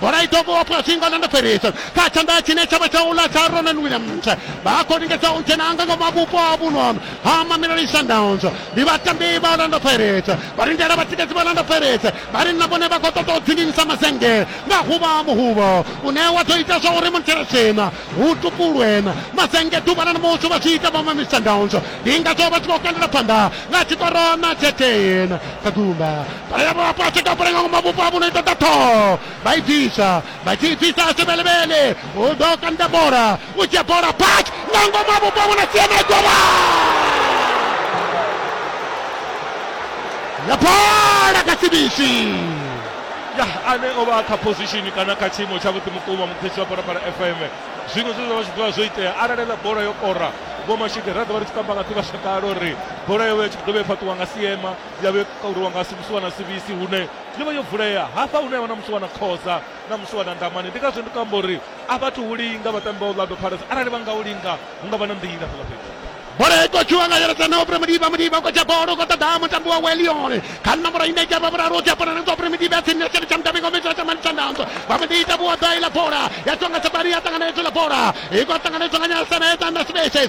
bola i ḓo vhowa fhasi nga Orlando Pirates kha tshanḓa tshine tsha vha tsha u ḽa tsha Ronwen Williams vha khou lingedza u dzhena nga ngomu ha vhupo ha vhuno ha Mamelodi Sundowns ndi vhatambi vha Orlando Pirates vha lindela vhatikedzi vha Orlando Pirates vha ri na vhone vha khou ṱoḓa u dzinginyisa mazennge nga huvha muhuvho une wa ḓo ita zwa uri munthelesina hu tupulwe mazennge ḓuvha ḽa namusi vha zwi ita vha Mamelodi Sundowns ndi ngazwo vha tshi khou kandela phanḓa nga tshikoro na tshethein kha gumba Haya mwapa cheka pale ngoma bupa buna itatato. Baivisa, baivisa asibele bele. Udo kanda bora, uche bora pat. Ngoma bupa buna siema goma. Ya bora kasibishi. ya ane o vha a kha position kana kha tshiimo tshavhuḓi mukuma mukhesi wa parapara fm zwiṅwe zwe zwa vha zwi ḓovha zwo itea arali ḽa bola yo kora vho mashike ra ḓo vha ri tshi kamba nga ḓivhasakale uri bola yo vha i tshi ḓo vha i fhaṱiwa nga siema ya vhe kauriwa nga musiwana sivisi hune yo vha yo vulea hafha hune ya vha na musiwana khoza na musiwana ndamani ndi ngazwo ndi kamba uri a vhathu hu linga vhatambi vha orlando pirates arali vha nga u linga hu nga vha na nḓila fhala fhethu bola i khou tshiwa nga yeledza na upre mudiba mudiba u khou tsha bola u khou ṱoḓa mutambi wa welione kha nomboro ine dzha vha vhuraru u tsha bola nanzwa upre mudiba ya tsini ya tsini tsha mutambi ngo mitwa tsha mani tsha nanzwa vha mu ḓiita vhuoḓa iḽa bola ya tshiwa nga sabari ya ṱanganedzwa iḽa bola i khou ṱanganedzwa nga nyasana ya ṱanda spaces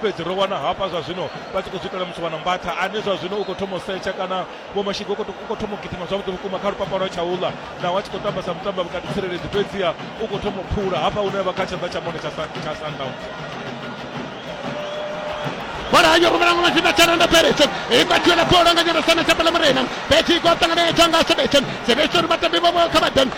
fhedzi ro wana hafha zwa zwino vha tshi khou zwi itela muthu wa na mbatha ane zwa zwino u khou thoma u setsha kana vho mashigo u khou thoma u gidima zwavhuḓi vhukuma kha lupapa lwa tsha uḽa naho a tshi khou tamba sa mutambi vhukati tsireledzi fhedziha u khou thoma u phula hafha hune vha kha tshanḓa tsha mone tsha sundowns bola yo rumela ngwana tshinda tsha renda fheledzo i vha thula bola nga nyana sana tsha pala murena fhedzi i khou ṱanganedzwa nga sebetsen sebetsen vhatambi vha vho kha vhadan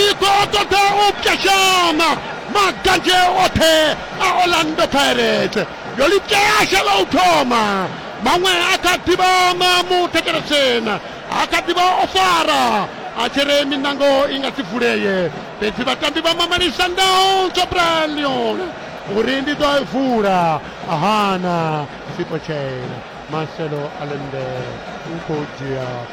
i khou ṱoḓa u pwashama maganzhe oṱhe a orlando pirates yo lipyasha lwa u thoma maṅwe a kha ḓivha na muthekeretshena a kha ḓivha o fara a tshi ri minango i nga si vulee fhedzi vhatambi vha mamani sundowns tsho brian leon uri ndi ḓo i vula ahana sipotshela marcelo alembele u khou dzhia